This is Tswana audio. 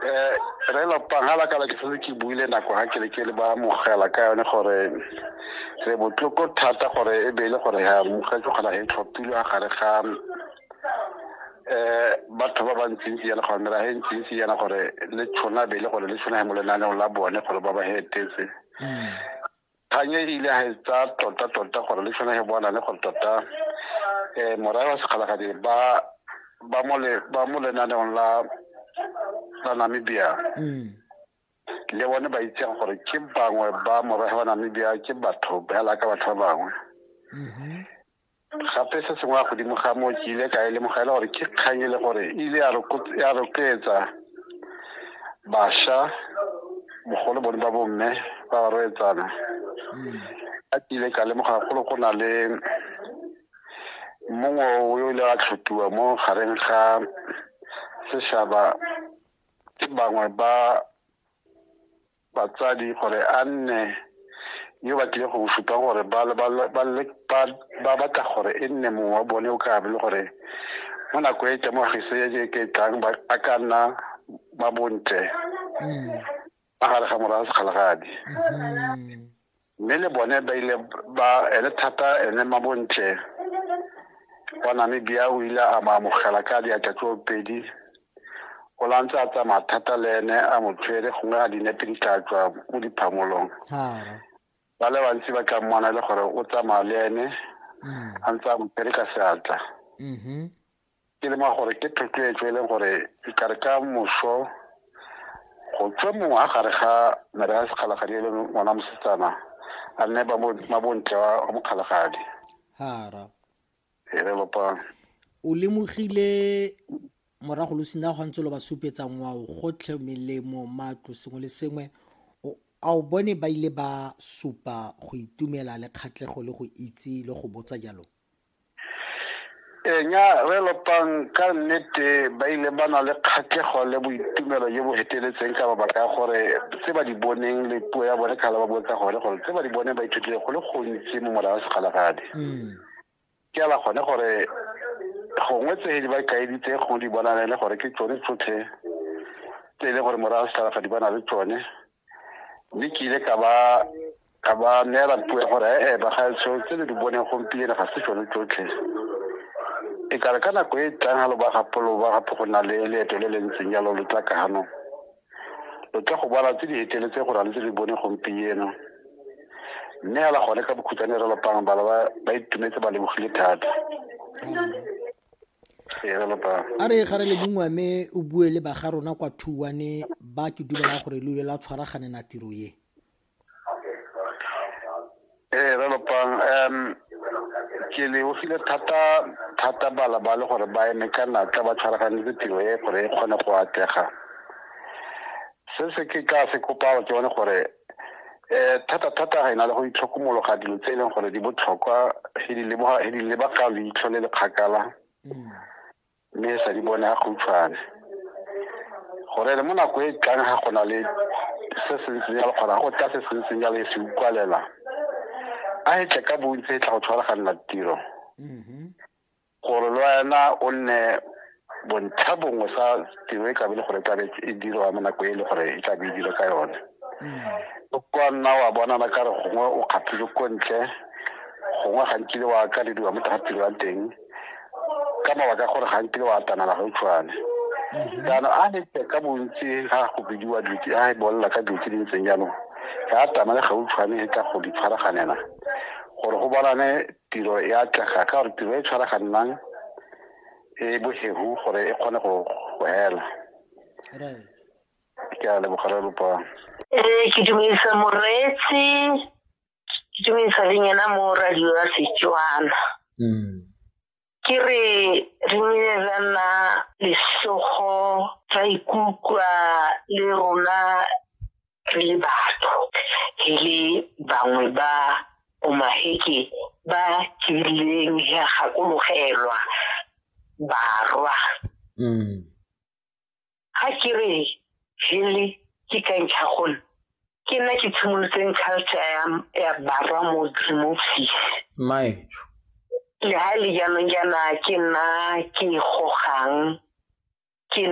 eh re lo pangala ka ke setse ke buile nako ha ke le ke le ba mogela ka yone gore re botloko thata gore e be le gore ha mogetse kgona e tlhophilwe a gare ga eh batho ba ba ntsintsi yana gore mera e ntsintsi yana gore le tshwana be le gore le tshwana mo lenaneong la bone gore ba ba hetetse mm. Kgang e ile ga e tsaya tota-tota gore le sone ge bona le gore tota um morae wa sekgalagadi ba ba mo le ba mo lenaneong la la Namibia le bone ba itseng gore ke bangwe ba morahe wa Namibia ke batho ba laka batho ba bangwe gape se sengwe ya godimo ga moo ke ile ka e lemoga e le gore ke kgang e le gore e ile ya rotloetsa bašwa bogolo bone ba bomme ba ba roetsana mm. a ke ile ka lemoga golo go na le mongwe o ile a tlhotiwa mo gareng ga sešaba ke bangwe ba batsadi gore a nne yo ba tlile go mo supa gore ba batla gore e nne mongwe wa bone o ka be le gore mo nako e teng mo gese e ke tlang ba ka nna ba bontle mm. magare ga morago sekgalagadi mm. mme le bone ba ile ba ene thata ene mabontle wa namibia o ile a maamogela ka diatla tso pedi o la ntse a tsamaya thata le ene a mo tshwere gongwe a dinepe di tla tswa mo diphamolong ba le bantsi ba tla mmona le gore o tsamaya le ene mm. a ntse a mo tshwere ka seatla mm-hmm. ke le ma gore ke thotloetso e leng gore e kare ka moso go tswe mongwe a gare ga mere ya sekgalagadi e leng ngwana mosetsana a nne mabontle wa mokgalagadi hara e re lopang o lemogile morago lo sena go ntse lo ba supetsa ngwao gotlhe melemo matlo sengwe le sengwe a o bone ba ile ba supa go itumela le kgatlhego le go itse le go botsa jalo Ee, nya re lopang ka nnete ba ile ba na le kgatlhego le boitumelo jo bo feteletseng ka mabaka ya gore tse ba di boneng le puo ya bone kgale ba bue ka gone gore tse ba di boneng ba ithutile go le gontsi mo mola wa segalagadi mm. ke ala gone gore gongwe tse di ba kaeditse gongwe di bonane le gore ke tsone tsotlhe tse e leng gore morago segalagadi ba na le tsone mme ke ile ka ba ka ba neela puo ya gore ee bagaetsho tse le di boneng gompieno ga se tsone tsotlhe e kare ka nako e e tlang ga lo ba gapolo ba gape go na le leeto le le ntseng jalo lo tla kano lo tla go bona tse di eteletse go na le tse di bone gompieno mme ala gone ka bokhutshwane re lopang bana ba itumetse ba lebogile thata a re gare le bungwa me o bue le baga rona kwa thuwane ba ke dumela gore le ile la tshwaraganela tiro ye ee re lopang um ke lebogile thata thata bala ba le gore ba eme ka natla ba tshwaraganetse tiro e gore e kgone go atlega se se ke ka se kopang ke bone gore um thata-thata ga e na le go itlhokomologa dilo tse e leng gore di botlhokwa e di lebaka leitlho le le kgakala mm. mme sa di bone ga gautshwane gore le mo nako e tlang ga go na le se se ntseng jalo kgona go tla se se ntseng jalo e se ukwalela a e tle ka bontsi e tla go tshwaraganela tiro mm-hmm. Gore le wena o nne bontlha bongwe sa tiro e tlabe le gore tlabe e dirwa mo nako e le gore e tlabe e dirwa ka yone mm. o kwa nna wa bonana ka re gongwe o kgaphile ko ntle gongwe ga nkile wa akalediwa mo tsa tiro ya teng ka mabaka gore ga nkile wa atanala ga utshwane mm-hmm. jaanong a ne ka bontsi ga go bidiwa dutse a e bolela ka dutse di ntseng jaanong ga atamale ga utshwane e tla go di tshwaraganela gore go bonane tiro e atlega ka gore tiro e tshwaraganang e bohegu gore e kgone go hela ke a lebogare lopang ee ke dumedisa moreetsi ke dumedisa le nyena mo radio ya setswana mm. ke re re ne ra nna lesogo ra ikutlwa le rona re le batho e le bangwe ba omaheke ba kileng ya gakologelwa barwa mm. ga ke re hele ke ka ntlha gone ke nna ke tshimolotseng culture ya ya barwa mo mo fis mae le ha e le jaanong jaana ke nna ke e gogang